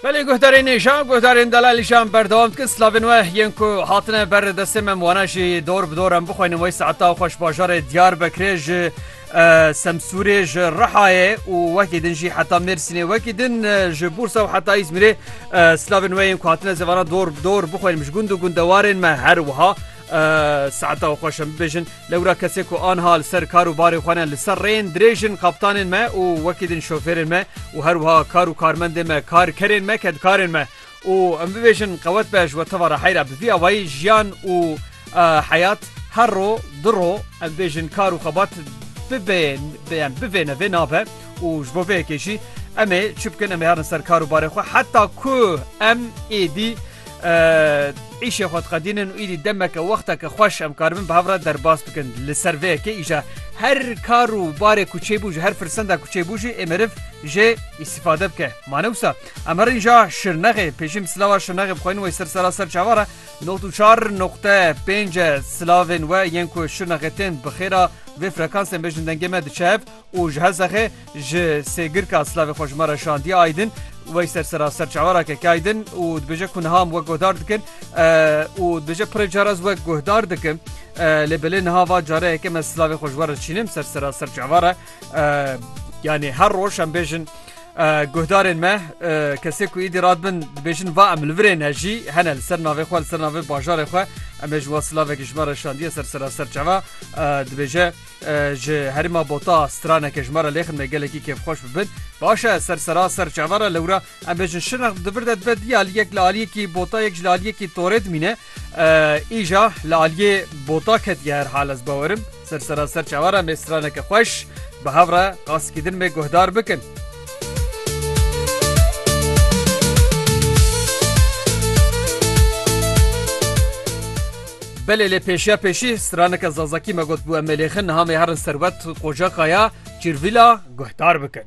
Belê guhdarên êşan, guhdarên delal îşan berdewam dikin slavên we yên ku hatine ber destê me wana jî dor bi dor em bixwînin wey saeta xweş bajarê diyar bekirê ji semsûrê ji rihayê û wekî din jî heta mêrsînê wekî din ji bûrsa û heta îzmirê slavên we yên ku hatine zevana dor bi dor bixwînin ji gund û gundewarên me her wiha Saeta xweş em bibêjin lewra kesê ku anha li ser kar û barê xwe ne li ser rêyên dirêj in kaptanên me û wekî din şofêrên me û her wiha kar û karmendên me karkerên me kedkarên me û em bibêjin qewet be ji we teva rehey re bi vî awayî jiyan û heyat her ro du ro em bêjin kar û xebat bibê bêyan bivêne vê nabe û ji bo vê yekê jî em ê çi bikin em ê herin ser kar û barê xwe heta ku em êdî Îşê xwe diqedînin û îdî demeke wexteke xweş em karibin bi hev re derbas bikin. Li ser vê yekê îja her kar û barê ku çêbû ji her firsenda ku çêbû jî ê meriv jê îstîfade bike. Ma ne wisa em herîn ja şirnexê pêşîm silava şirnexê bixweynin wey ser sera ser çava re noqt û çar noqte pênc e silavên we yên ku şirnexê tên bi xêra vê frekansên bejin dengê me diçe hev û ji Hesexê ji Sêgirka silavê xwe ji me re şandiye Aydin Weyser sera ser çavara keke Aydin û dibêje ku niha em wek guhdar dikin û dibêje pirê car ez wek guhdar dikim lê belê niha va care yeke me silavê xwe ji we re çînim ser sera ser çavara yanê her roj em bêjin guhdarên me kesê ku îdî radbin dibêjin va em li virê ne jî hene li ser navê xwe li ser navê bajarê xwe em ê ji we silavekî ji me re şandiye ser sera ser çava dibêje Ji herêma bota straneke ji me re lêxin me gelekî kêfxweş bibin. Baş e ser sera ser çavan re lewra em bêjin şirnex di vir de dibe diya li yek li aliyekî bota yek ji li aliyekî torê dimîne. Îja li aliyê bota ketiye her hal ez bawerim ser sera ser çavan re me straneke xweş bi hev re qasikî din me guhdar bikin. Belê lê pêşiya pêşî straneke zazakî me got bû em ê lêxin niha mêherin serwet qocaqaya çirvîla guhdar bikin.